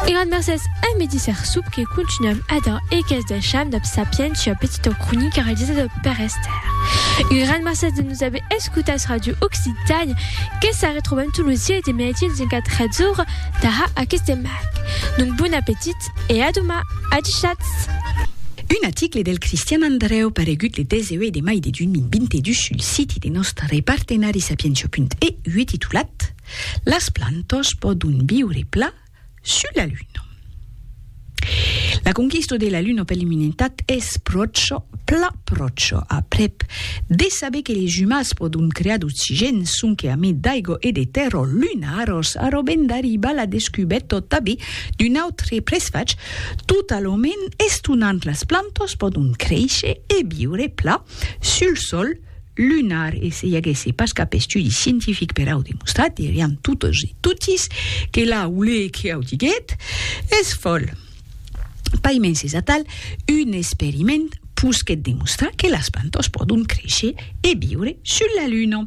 E grand mercés a Medisser Sup que continuam ada e qu'es deisham dab sapientia petita cronica realizada per Esther. Un grand mercés de nos aver escutats Radio Occitània que se retrobam tot lo sièi de mèdi en 24 hètzora tara aqueth demag. Donc bon apetit e a doma. Adishatz! Un aticle del Cristian Andreu paregut le 18 de mai de 2022 sul siti de nòstre partenari Sapientia.eu titulat, Las plantas pòdon viure plan sus la Luna. La conquista de la Luna per l'umanitat es pròcha, plan pròcha, aprèp de saber que les umans pòdon crear d'oxigèn sonque a mai d'aiga e de tèrra lunaras, arrobènt d'arribar la descubèrta tanben d'un autre presfach totalament estonant, las plantas pòdon créisher e viure plan sul Sòl. lunar e se i aguèsse pas cap estudi scientific per au demostrar, dirián totes e totis que la olé que au diguèt es fòl. Paimens es atal un experiment posquèt demostrar que las plantas pòdon créisher e viure sus la luna.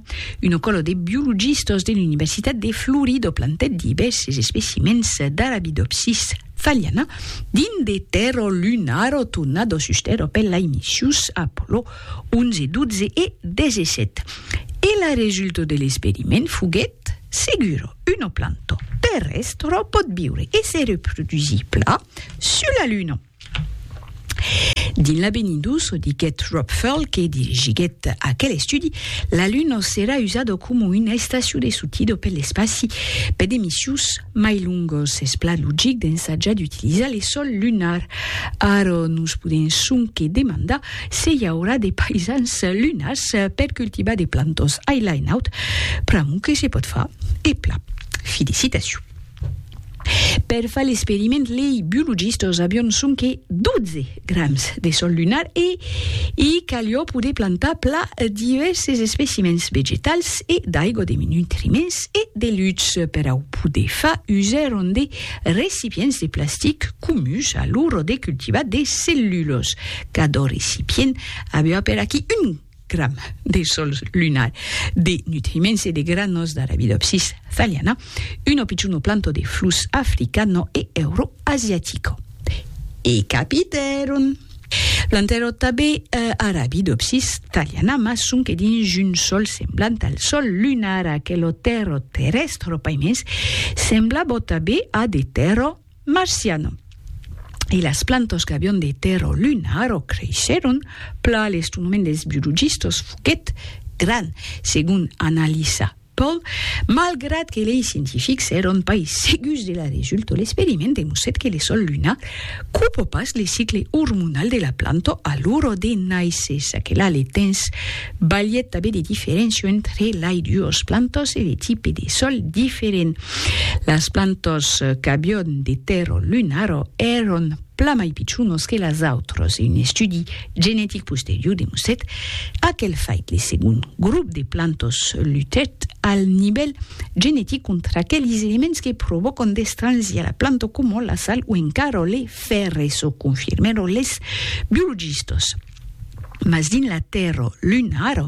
Una còla de biologistas de l'Universitat de Florida plantèt divèrses especimèns d'Arabidopsis thaliana dins de tèrra lunara tornada sus tèrra per la imissus Apollo 11, 12 e 17. E la resulta de l'experiment foguèt segura, una planta terrèstra pòt viure e se reprodusir plan sus la Luna. Dins l'avenir dus, diguèt Rob Furl, que dirigiguèt aquel estudi, la Luna serà usada coma una estacion de sortida per l'espaci per de missions mai longas. Es plan logic d'ensajar d'utilizar l'esòl lunar. Ara nos podèm sonque demandar Se i aurà de paisans lunars per cultivar de plantos ai lai naut, pr'amor que se pòt far, e plan. Felicitacion. Per far l'experiment lei biologistas avion sonque 12 grams de sol lunar e i calió poder plantar pla divèrses especimens vegetals e d'aigua de nutriments e de lutz per au poder far usèron de recipients de plastic comuns alura de cultivar de cellulas Cador recipient aviá per aquí un gram de sol lunar, de nutriments e de granos d'Arabidopsis thaliana, un opiciuno planto de flux africano e euroasiatico. E capitèron! Plantèron tanben Arabidopsis thaliana, mas sonque dins un sol semblant al sol lunar, aquelo tèrro terrèstro paimens semblabò tanben a de tèrro, Marciano. E las plantas qu'avián de tèrra o luna ara creishèron, pla l'estonament dels biologistas foguèt grand, segon analisa Paul, malgrat que lei scientifics èran pas segurs de la resulta, l'experiment demostrèt que le sòl lunar copa pas le cicle ormonal de la planta a l'ora de nàisser, ça que la le temps balhèt tanben de diferéncia entre lei duas plantas e de tipe de sòl diferent. Las plantors qu'avión de Tero Lunaro èron plan mai pichonos que las autras e un estudi genetic posterior demostrèt aquel fait. Le segond grop de plantors lutèt al nivèl genetic contra aqueles elements que provòcan d'estranhir la planta coma la sal o encara le fèrre, çò confirmèron les biologistas. Mas dins la tèrra, l'un ara,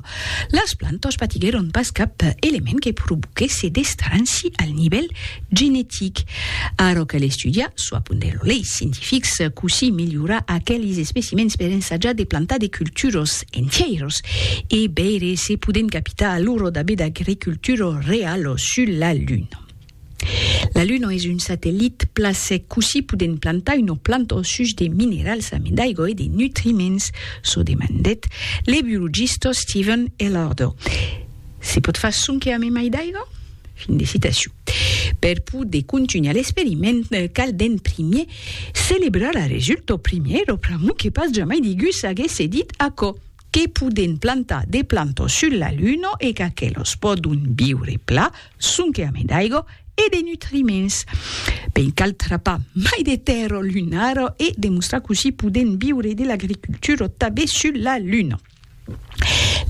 las plantas patiguèron pas cap element que provoquèsse d'estranci al nivèl genetic. Ara cal estudiar, çò apondèt lo lei scientifics, cossí melhorar aquelis especimèns per ensajar de plantar de culturas entièras e veire se podèm capitar a l'ora d'aver d'agricultura reala sul la Luna. La Luna es un satellit pla sec, cossí podèm plantar una planta au such de minerals amé d'aigua e de nutriments? çò demandèt le biologista Steven Ellardo. Se pòt far sonque amé mai d'aiga? Fin de citacion. Per poder contunhar l'experiment, cal d'en primier celebrar la resulta, primièr o pr'amor que pas jamai digú s'aguèsse dit aquò. que podèn plantar de plantas sus la Luna e qu'aquelas pòdon viure pla sonque ame d'aiga e de nutriments. Ben cal trapar mai de tèrra lunara e demostrar cossí podèn viure de l'agricultura tabé sus la Luna.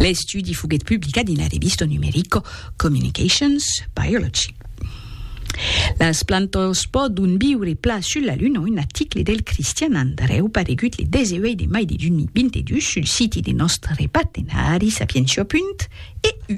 L'estudi foguèt publicat dins la revista numerica Communications Biology. Las plantas pòdon viure plan sul la Luna, un article del Cristian Andreu paregut le 18 de mai de 2022 sul siti de nòstre partenari Sapientia. EU.